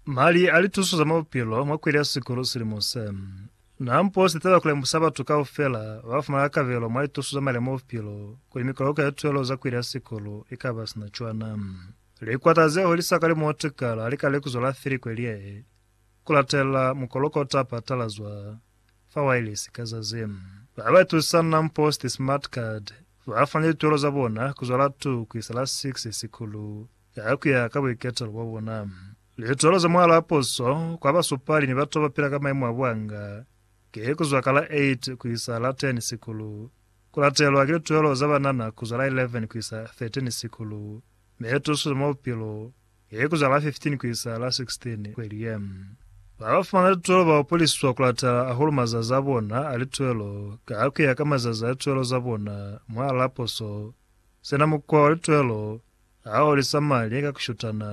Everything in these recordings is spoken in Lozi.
Mali a lituso za mwa bupilo mwa kweli ya sikulu silimo se. Na mpo se taba kulemusa batu kaufela ba fumana kabelo mwa lituso za mali a mwa bupilo kuli mikoloko ya tuelo za kweli ya sikulu i ka ba sina cwana. Likwata ze holisa ka limo tukala li ka lekuzo la fili kweli ye, ku latelela mukoloko o ta patalazwa fa wailesi ka zazi. Ba ba itusa na mpo siti Smart Card ba fani lituelo za bona ku zwala 2 ku isa la 6 sikulu. ya ku ya ka buiketelo bwa bona. Lituhelo za Mwalo wa Puso kwa basupali ni batu ba pila ka maimo a buanga ki ku zwa ka la 8 ku isa la 10 sikulu, ku latelwa ki lituhelo za banana ku zwa la 11 ku isa 13 sikulu, mi tuso za mwa bupilo ki ku zwa la 15 ku isa la 16 kweli ye. Ba ba fumana lituhelo ba hopoliswa ku latela hahulu mazazi a bona a lituhelo ka ku ya ka mazazi a lituhelo za bona mwa la puso, sina mukwa wa lituhelo Ha u li samali ka ku shutana,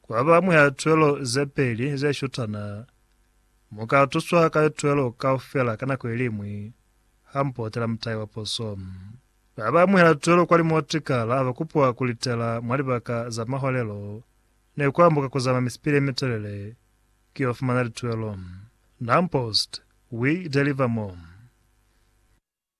kwa ba mwa lituelo ze peli ze shutana. Mu ka tuswa ka lituelo kaufela ka nako i li ñwi, ha mu potela mutai wa poso. Ba ba mwa lituelo kwa limotikala ba kupwa ku litela mwa libaka za maholelo ni ku ambuka ku zama misipili ye mitelele ki yo fumana lituelo. Naumpost, We Deliver More.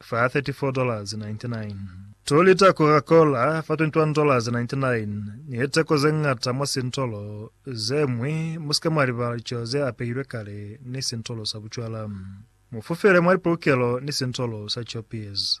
fa $34.99, two lita Coca-Cola fa $21.99, ni he teko ze ñata mwa sintolo ze ñwi. Mu si ke mwa libala licelo ze apehilwe kale ni sintolo sa bucwala. Mu fufele mwa lipolokelo ni sintolo sa Choppies.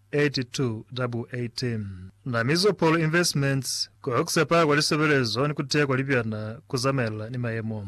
8218 Na Mizopol Investments, Ku Oxipa kwa Lisebelezo ni Ku Tea kwa Libyana ku Zamaelana ni Mayemo.